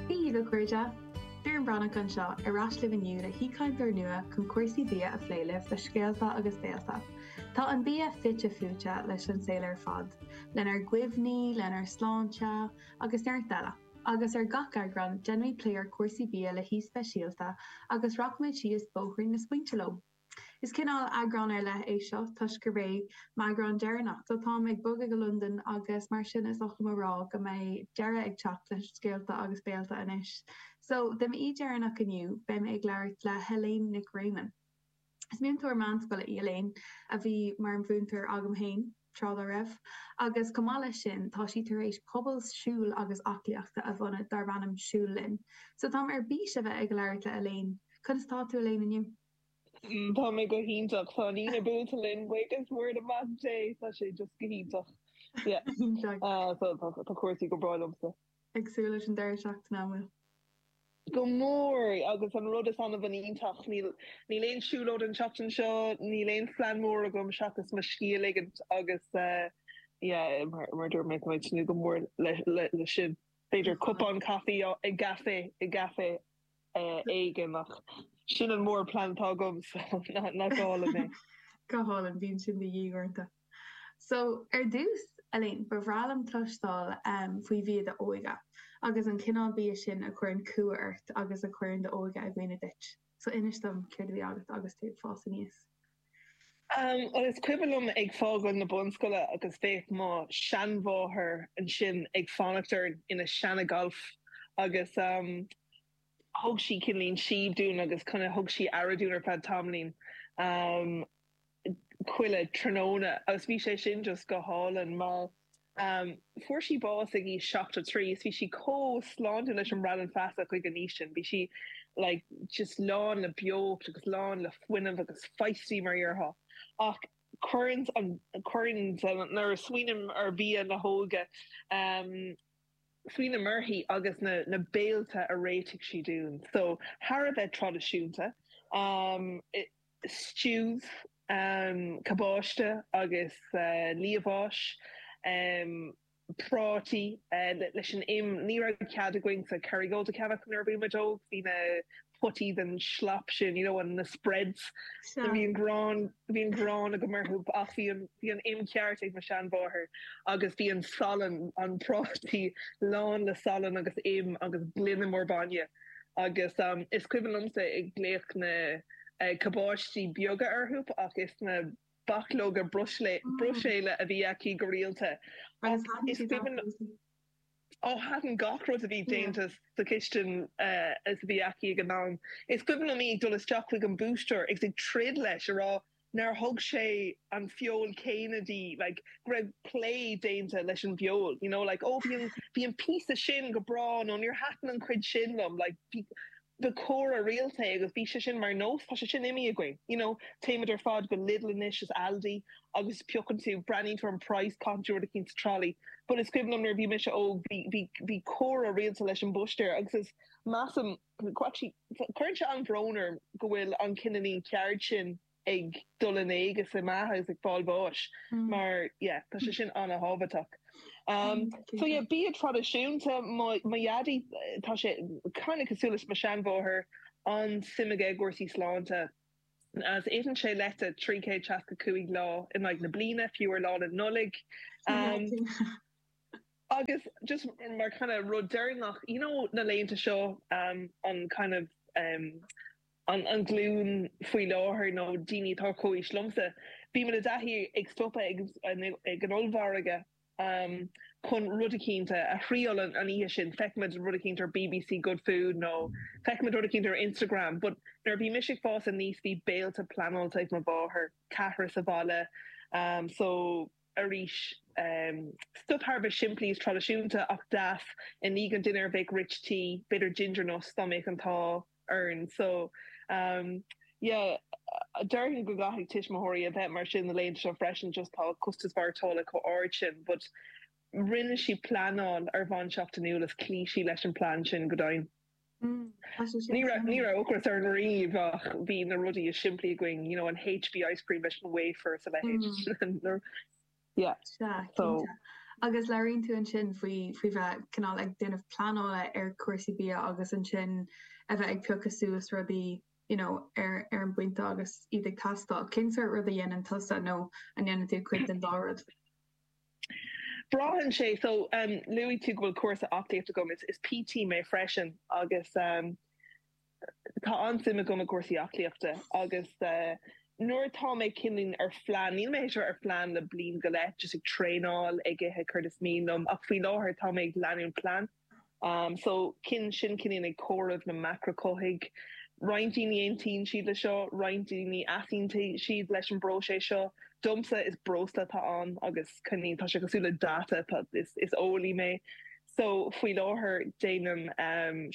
Bhuel a chairde! Doireann Breathnach anseo ar ais libh inniu le haoichainteoir nua chun cúrsaí bia a phlé libh le scéalta agus béilte. Tá an bia fite fuaite leis an saol ar fad, lenár gcuimhní, lenár sláinte agus neart eile. Agus ar gach eagrán, déanfaimid plé ar chúrsaí bia le haoi speisialta agus rachaimid síos bóithrín na smaointe leo. Is cineál eagrán ar leith é seo toisc gurb é m'eagrán deireanach, so táim ag bogadh go Londain agus mar sin is oth liom a rá go mbeidh deireadh ag teacht le Scéalta agus Béilte anois. So, do m'aoi dheireanach inniu, beidh mé ag labhairt le hElaine Nic Réamoinn. Is múinteoir meánscoile í Elaine, a bhí mar mhúinteoir agam féin tráth dá raibh, agus chomh maith leis sin tá sí tar éis pobal siúil agus aclaíochta a bhunú darb ainm Siúl Linn. So táim ar bís a bheith ag labhairt le Elaine. Conas atá tú Elaine inniu? Tá mé go hiontach. Tá an Aoine buailte linn. Buíochas mór le Mac Dé. Tá sé just go hiontach. Yeah. Iontach. Tá, tá cúrsaí go breá liomsa. Ag súil leis an deireadh seachtaine, an bhfuil? Go mór, agus an rud is an-iontach, níl, níl aon siúlóid an tseachtain seo, níl aon phlean mór agam seachas mo scíth a ligint agus, yeah, mar, mar a dúirt mé, tá mé ag tnúth go mór le, le, leis sin. B'fhéidir cupán caife i gcaifé, i gcaifé éigin ach sin an mór plean atá agam so nach álainn é. Go hálainn, bíonn sin de dhíth uaireanta. So, ar dtús, Elaine, ba bhreá liom cloisteáil faoi bhia d'óige agus an cineál bia sin a chuireann cumha ort agus a chuireann d'óige i gcuimhne duit. So, inis dom céard a bhí agat agus tú ag fás aníos. Is cuimhin liom ag fágáil na bunscoile agus bheadh mo sheanmháthair ansin ag fanacht orainn ina seana-Golf agus thug sí cineáilín síob dúinn agus thug sí aire dúinn ar feadh tamaillín chuile tráthnóna agus bhí sé sin just go hálainn mar Fuair sí bás ag aois 73 is bhí sí chomh sláintiúil leis an mbradán feasa chuig an aois sin. Bhí sí like just lán le beocht agus lán le fuinneamh agus feisty mar a déarfá. Ach cuireann an, cuireann an, nuair a smaoiním ar bhia na hóige, smaoiním uirthi agus na, na béilte a réitigh sí dúinn. So thar a bheith traidisiúnta. stew cabáiste agus liamháis, prátaí, leis an im, ní raibh cead againn an Kerrygold a cheannach nuair a bhí muid óg, bhí na potaí den slop sin, you know na spreads, bhí an ghráin, bhí an ghráin agam orthu ach bhí an, bhí an im ceart ag mo sheanmháthair agus bhí an salann, an prátaí lán le salann agus im agus gloine mór bainne. agus is cuimhin liomsa ag glaoch na cabáistí beaga orthu, ach is na bachlóga Bruiséile a bhí aici go rialta. Ó, ní thaitin gach rud a bhí déanta sa chistin seo a bhí aici ag an am. Is cuimhin liom í ag dul isteach chuig an mbúistéir agus ag troid leis a rá nuair a thug sé an feoil chéanna dí, like, go raibh plé déanta leis an bhfeoil, you know, like, oh, bhí an píosa sin go breá, nó níor thaitin an chuid sin liom, like, ba chomhrá rialta é agus bhí sé sin mar nós, tá sé sin imithe againn, you know, téimid ar fad go Lidl anois is Aldi agus piocann tú braitheann sé ar an price, caitheann tú rud eicínt sa trolley, but is cuimhin liom nuair a bhí mise óg, bhí, bhí, bhí comhrá rialta leis an mbúistéir agus is, measaim. Cuireann sé an-bhrón orm go bhfuil an kind of an cheird sin ag dul in éag agus ag meath is ag fáil bháis mar yeah tá sé sin an-thábhachtach. So yeah bia traidisiúnta mo mo dhaidí tá sé kind of cosúil le mo sheanmháthair an-suim aige i gcúrsaí sláinte agus itheann sé leite trí chéad seasca cúig lá in aghaidh na bliana, fiú ar lá na Nollaig. Agus just mar kind of rud deireanach, you know na laethanta seo um an kind of um an an glún faoi láthair nó daoine atá comhaois liomsa, bímid i dtaithí ag stopadh ag ag an ollmhargadh um chun rud eicínt a a thriail an an oíche sin, feicimid rud eicínt ar bbc Good Food nó feicimid rud eicínt ar Instagram but nuair a bhí mise ag fás aníos bhí béilte pleanáilte ag mo mháthair, ceathrar sa bhaile um so. arís. Stuif thar a bheith simplí is traidisiúnta ach deas. I ndiaidh an dinnéir bheadh Rich Tea, b'fhéidir Ginger Nuts, dá mbeadh an t-ádh orainn. So, yeah, déarfainn go gcaithfidh tuismitheoirí a bheith mar sin na laethanta seo freisin, just tá costas maireachtála chomh ard sin. But rinne sí pleanáil ar bhonn seachtainiúil is chloígh sí leis an bplean sin go deimhin. Ní raibh, ní raibh ocras orainn riamh ach bhí na rudaí is simplí againn, you know, an HB ice cream leis an wafer sa leithéid. Yeah. Sea, cinnte. Agus labhraíonn tú ansin faoi, faoi bheith cineál ag déanamh pleanála ar chúrsaí bia agus ansin a bheith ag piocadh suas rudaí, you know, ar, ar an bpointe agus iad ag teastáil. Cén sórt rud a dhéanann tusa nó an ndéanann tú cuid den dá rud? Braitheann sé. So, luaigh tú go bhfuil cúlra aclaíochta agam. Is PT mé freisin agus tá an-suim agam i gcúrsaí aclaíochta agus nuair atá mé kind of ar phlean, níl mé a bheith ar phlean le bliain go leith, just ag traenáil, ag ithe céard is mian liom ach faoi láthair tá mé ag leanúint plean. Sin cinniúint ag comhaireamh na macrachothaithigh. Roinnt daoine, aontaíonn siad leis seo, roinnt daoine, easaontaíonn siad leis an bpróiseas seo. Domsa, is breosla atá ann agus cinniúint. Tá sé cosúil le data, is eolaí mé, só faoi láthair déanaim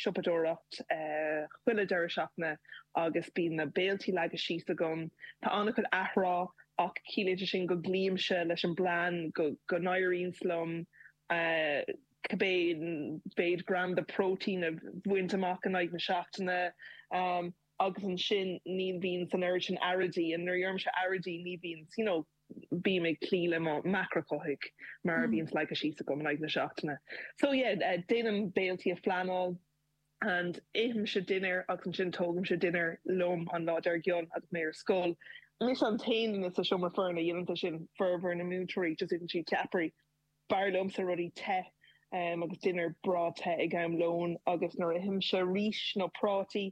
siopadóireacht chuile deireadh seachtaine agus bíonn na béiltí leagtha síos agam. Tá an-chuid athrá ach ciallaíonn sé sin go gcloímse leis an bplean, go n-éiríonns liom. cibé méid gram de phróitéin a bhaint amach in aghaidh na seachtaine, agus ansin ní bhíonn an oiread sin earráidí, and nuair a deirimse earráidí ní bhíonn, you know, bím ag cloí le mo mhacrachothaigh mar a bhíonns leagtha síos agam in aghaidh na seachtaine. So yeah, déanaim béiltí a phleanáil and ithimse dinnéar agus ansin tógaimse dinnéar liom an lá dár gcionn agus mé ar scoil. Mise an t-aon duine sa seomra foirne, a dhéanann é sin, formhór na múinteoirí, just itheann siad ceapairí. B'fhearr liomsa rudaí te agus dinnéar breá te ag am lóin agus nuair a ithimse rís nó prátaí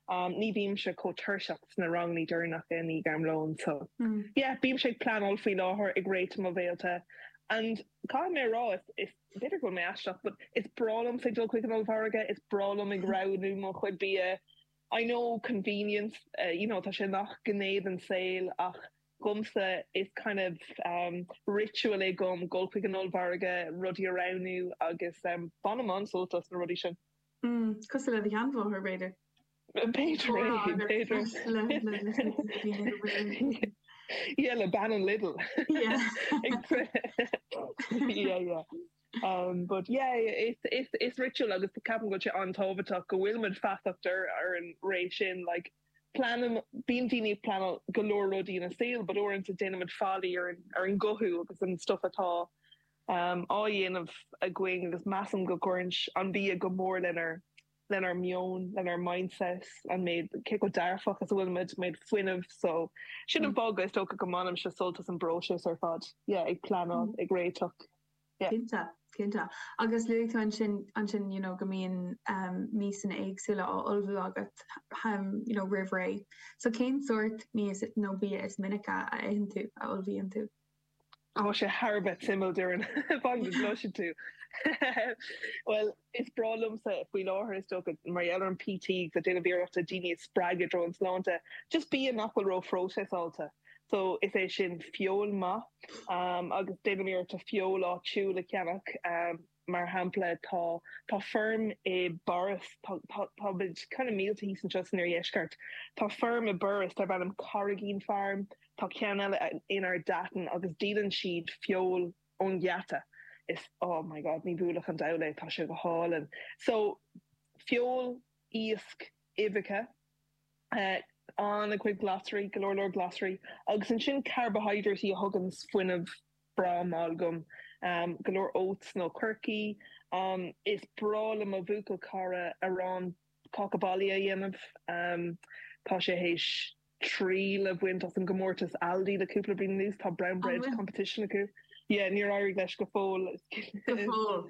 ní bhímse chomh tuirseach sna rangannaí deireanacha i ndiaidh am lóin. So yeah, bímse ag pleanáil faoi láthair, ag réiteach mo bhéiltí and caithfidh mé a rá, b'fhéidir go bhfuil mé aisteach but is breá liomsa ag dul chuig an ollmhargadh, is breá liom ag roghnú mo chuid bia. I know, convenience, you know, tá sé i ngach gné den saol ach. Dhomsa is kind of ritual é dhom dhul chuig an ollmhargadh rudaí a roghnú agus bainim an-sult as na rudaí sin. Mm, cosúil le do sheanmháthair, b'fhéidir? B'fhéidir é, b'fhéidir. Yeah, le bean an Lidl. Yeah. Yeah, yeah. But yeah, is ritual agus ceapaim go bhfuil sé an-tábhachtach go bhfuil muid feasach ar an ré sin, like, pleanaim, bíonn daoine ag pleanáil go leor rudaí ina saol but uaireanta déanaimid faillí ar ar an gcothú agus an stuff atá á dhéanamh againn agus measaim go gcuireann an bia go mór lenár lenár meon, lenár mindset, an méid, cé chomh dearfach is a bhfuilimid, méid fuinnimh so sin an fáth go is dócha go mbainimse sult as an bpróiseas ar fad, yeah ag pleanáil, ag réiteach. Cinnte, cinnte. Agus luaigh tú ansin, ansin, you know, go mbíonn miasanna éagsúla á ullmhú agat, you know, roimh ré. So cén sórt miasa nó bia is minice a itheann tú, a ullmhaíonn tú? Tá sé thar a bheith suimiúil, Doireann, fadhb is loiscfidh tú. Bhuel, Is breá liomsa faoi láthair, is dócha, mar gheall ar an PT, agus ag déanamh iarrachta daoine a spreagadh i dtreo an tsláinte, just bia nach bhfuil ró-phróiseasáilte. So, is é sin, feoil maith. Agus déanaim iarrachta feoil áitiúil a cheannach. Mar shampla, tá, tá feirm i bPáras, tá, tá, tá muid kind of millte thíos anseo san oirdheisceart, tá feirm i Borris darb ainm Carrigeen Farm, tá ceann eile in Ardattin, agus díolann siad feoil ón ngeata is oh my god ní bhuailfeadh an diabhal é tá sé go hálainn so feoil, iasc, uibheacha eh an-chuid glasraí, go leor leor glasraí agus ansin carbaihiodráití a thuganns fuinneamh breá mall dhom am go leor oats nó coirce am is breá le mo bhuachaill cara arán Cáca baile a dhéanamh. Tá sé théis triail a bhaint as an gcomórtas Aldi le cúpla bliain anuas. Tá Brown Bread Competition acu. Yeah, níor éirigh leis go fóill. Go fóill.